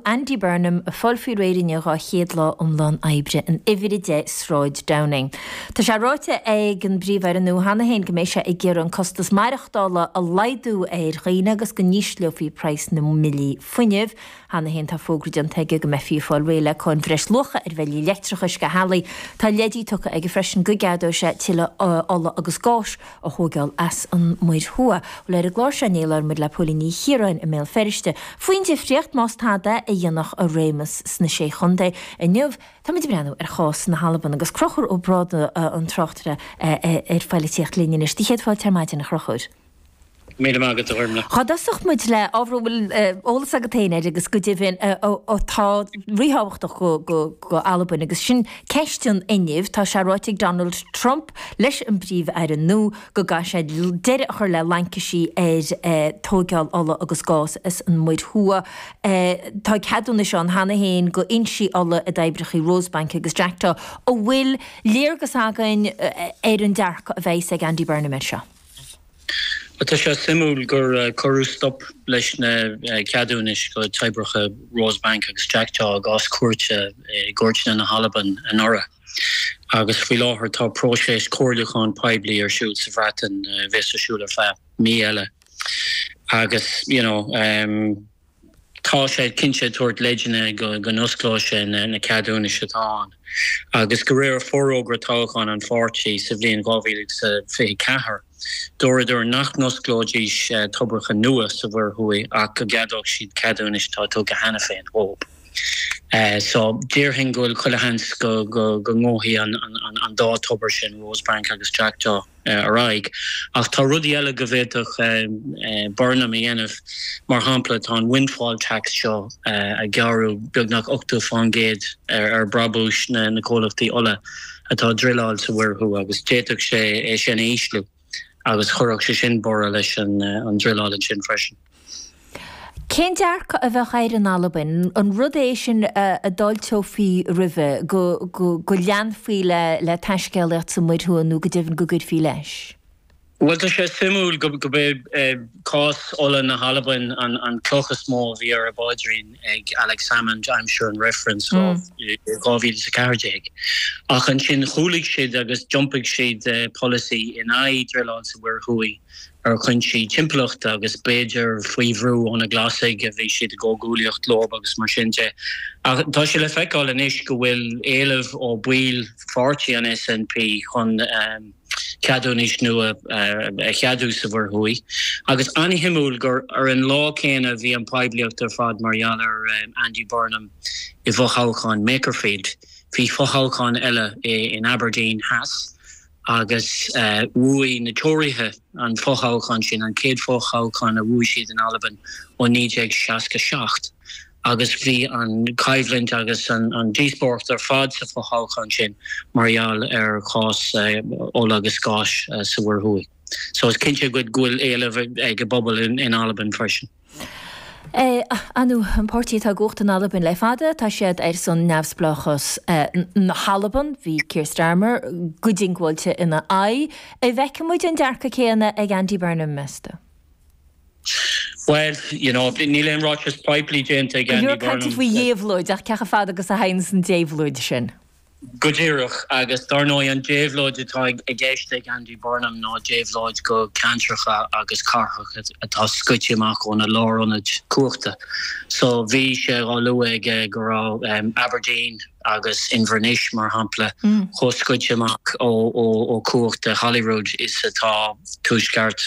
Andy Burnham ag fáil faoi réir don dara lá iomlán oibre in Uimhir 10 Sráid Downing. Tá sé ráite ag an bPríomh-Aire nua cheana féin go mbeidh sé ag iarraidh an costas maireachtála a laghdú ar dhaoine agus go n-ísleofaí praghas na mbillí fuinnimh. Cheana féin tá fógra déanta aige go mbeifí ag fáil réidh le cáin bhreis-luacha ar bhillí leictreachais go háirithe. Tá leidí tugtha aige freisin go gceadóidh sé tuilleadh ola agus gáis, a thógáil as an Muir Thuaidh. Bhuel, ar an gclár seo inné labhair muid le Póilín Ní Chiaráin i mBéal Feirste faoin difríocht, más tada, a dhéanfadh a réimeas sna Sé Chontae. Inniu, táimid ag breathnú ar chás na hAlban agus Crochúr Ó Brádaigh an tráchtaire ar pholaitíocht linn anois. Do chéad fáilte ar maidin, a Chrochúir. Míle maith agat, a Ghormfhlaith. Dá dtosódh muid le ábhar a bhfuil eolas agat féin air agus go deimhin atá ríthábhachtach go Albain agus sin ceist an fhuinnimh. Tá sé ráite ag Donald Trump leis an bPríomh-Aire nua go gcaithfidh sé deireadh a chur le laincisí ar tógáil ola agus gás as an Muir Thuaidh. Tá ceadúnais ann cheana féin go fhoinsí ola i dtoibreacha Rosebank agus Jackdaw. An bhfuil léargas againn ar an dearcadh a bheidhs ag Andy Burnham air seo? Tá sé suimiúil gur cuireadh stop leis na ceadúnais go toibreacha Rosebank agus Jackdaw i gcás cúirte i gcúirteanna na hAlban anuraidh agus faoi láthair tá próiseas comhairliúcháin poiblí ar siúl sa Bhreatain a bheas ar siúl ar feadh mí eile agus. Tá sé cinnte ag tabhairt leideanna go n-osclóidh sé na ceadúnais atá ann agus de réir forógra toghcháin an pháirtí sa bhliain 2024. Dúradar nach n-osclóidís toibreacha nua sa Mhuir Thuaidh ach go gceadódh siad ceadúnais atá tugtha cheana féin. Déarfainn go bhfuil chuile sheans go ngabhfaidh an dá thobar sin, Rosebank agus Jackdaw. ar aghaidh. Ach tá rudaí eile go bhféadfadh Burnham a dhéanamh, mar shampla tá an windfall tax seo ag gearradh, beagnach 80 faoin gcéad ar bhrabúis na comhlachtaí ola atá ag druileáil sa Mhuir Thuaidh, agus d'fhéadfadh sé é sin a ísliú agus chuirfeadh sé sin borradh leis an druileáil ansin freisin. Cén dearcadh a bheadh air in Albain? An rud é sin a d'fháilteofaí roimhe, go leanfaí le taiscéalaíocht sa Mhuir Thuaidh nó go deimhin go gcuirfí leis? Bhuel, tá sé suimiúil gurb é cás ola na hAlban an cloch is mó a bhí ar a bpaidrín ag Alex Salmond aimsir an reifrinn in 2014. Ach ansin chúlaigh siad agus d'iompaigh siad polasaí in aghaidh druileáil sa Mhuir Thuaidh. ar chuinsí timpeallachta agus b'fhéidir faoi bhrú ó na Glasaigh a bhí siad i gcomhghuaillíocht leob agus mar sin de. Ach tá sé le feiceáil anois go bhfuil éileamh ó bhaill pháirtí an SNP chun ceadúnais nua a cheadú sa Mhuir Thuaidh. Agus an-shuimiúil gur ar an lá céanna a bhí an poiblíocht ar fad mar gheall ar Andy Burnham i bhfothoghchán Makerfield. Bhí fothoghchán eile in Aberdeen Theas agus bhuaigh na Tóraithe an fothoghchán sin, an chéad fothoghchán a bhuaigh siad in Albain ó 1967, agus bhí an choimhlint agus an díospóireacht ar fad sa fothoghchán sin mar gheall ar chás ola agus gáis sa Mhuir Thuaidh. So is cinnte go bhfuil éileamh ag an bpobal in Albain freisin. An SNP, an páirtí atá i gcumhacht in Albain le fada, tá siad ar son neamhspleáchas na hAlban. Bhí Keir Starmer go diongbháilte ina aghaidh. An bhfeicfidh muid an dearcadh céanna ag Andy Burnham, meas tú? Bhuel, you know, níl aon ráiteas poiblí déanta ag Andy Burnham. Go leor cainte faoi dhéabhlóid, ach ceantracha atá ar a aghaidh sa déabhlóid sin. Go díreach, agus dar ndóigh an déabhlóid atá i gceist ag Andy Burnham ná déabhlóid go ceantracha agus cathracha atá scoite amach óna lárionaid cumhachta. So bhí sé á lua aige go raibh Aberdeen agus Inbhir Nis, mar shampla, chomh scoite amach ó chumhacht Holyrood is atá. Tuaisceart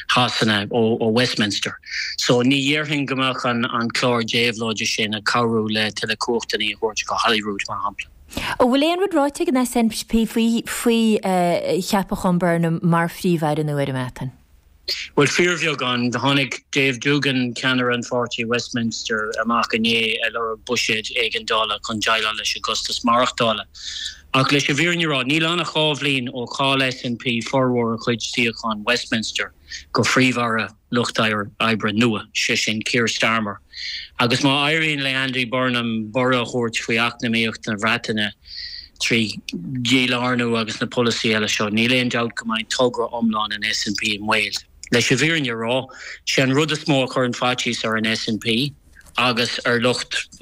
Shasana ó Westminster. So ní dhéarfainn go mbeadh an clár déabhlóide sin ag cabhrú le tuilleadh cumhachtainí a thabhairt go Holyrood, mar shampla. An bhfuil aon rud ráite ag an SNP faoi cheapachán Burnham mar Phríomh-Aire nua ar an mBreatain? Bhuel, fíorbheagán. Tháinig Dave Doogan, ceannaire an pháirtí i Westminster, amach inné ag lorg buiséid éigeandála chun déileáil leis an gcostas maireachtála. Ach leis an bhfírinne a rá, níl ann ach dhá bhliain ó chaill SNP formhór a chuid suíochán Westminster go Príomh-Aire Lucht Oibre nua, sé sin Keir Starmer. Agus má éiríonn le Andy Burnham borradh a thabhairt faoi eacnamaíocht na Bhreataine trí dhílárnú agus na polasaithe eile seo, níl aon dabht go mbeidh togra iomlán an SNP i mbaol. Leis an bhfírinne a rá, sé an rud is mó a chuireann faitíos ar an SNP agus ar lucht.